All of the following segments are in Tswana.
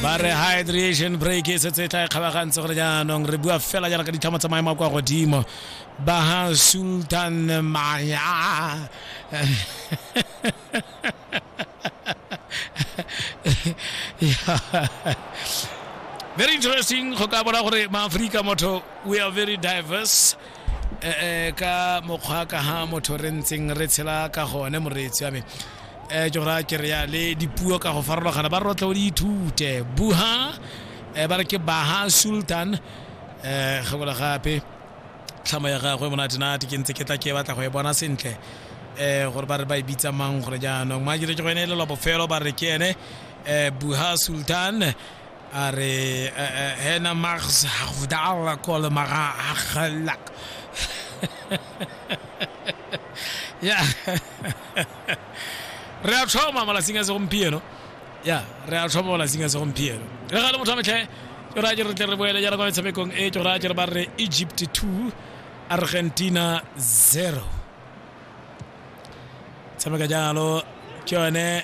ba re hydration break e setse e tla e kgabagantse gore jaanong re bua fela jaana ka ditlhamo tsa maemo a kwa godimo ba ha sultan maya very interesting go ka bona gore maaforika motho we are very diverse Eh, eh, ka mokgwa ka ha motho re ntseng re tshela ka gone moreetsi wa me um ke gora ke reya le dipuo ka go farologana ba rotle o di ithute buha um ba re ke baha sultan um gebola gape tlhamo ya gagwe monatenate ke ntse ke tla ke batla go e bona sentle um gore ba re ba e bitsa mang gore jaanong maakere ke go ene e lelwa bofelo ba re ke ene um buha sultan A re, Hena Max Hagvdal kol mara Haghlak. ya re a tlhoma malatsing a segompieno ya re a tlhoma malatsing a segompieno re ga le motho a metlhe ke raya ke re tle re boele jaana kwa metshamekong e ke raya ke re ba re egypt 2 argentina 0 tshameka jalo ke yone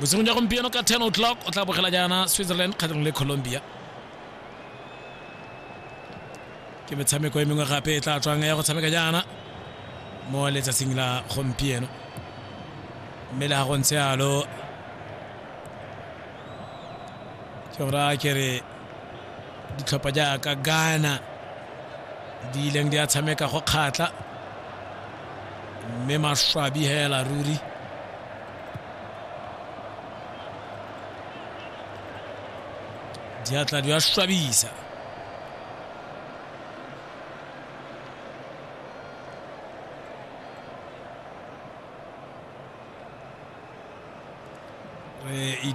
bosigo ja gompieno ka 10 o'clock o tla bogela jaana switzerland kgatlhanong le colombia ke metshameko e mengwe gape e tla tswang ya go tshameka jaana mo letsatsing la gompieno mme le ga go ntse alo ke gora ke re ditlhopha jaaka ghana di ileng di a tshameka go kgatla mme maswabi hela ruri diatla di a swabisa re ita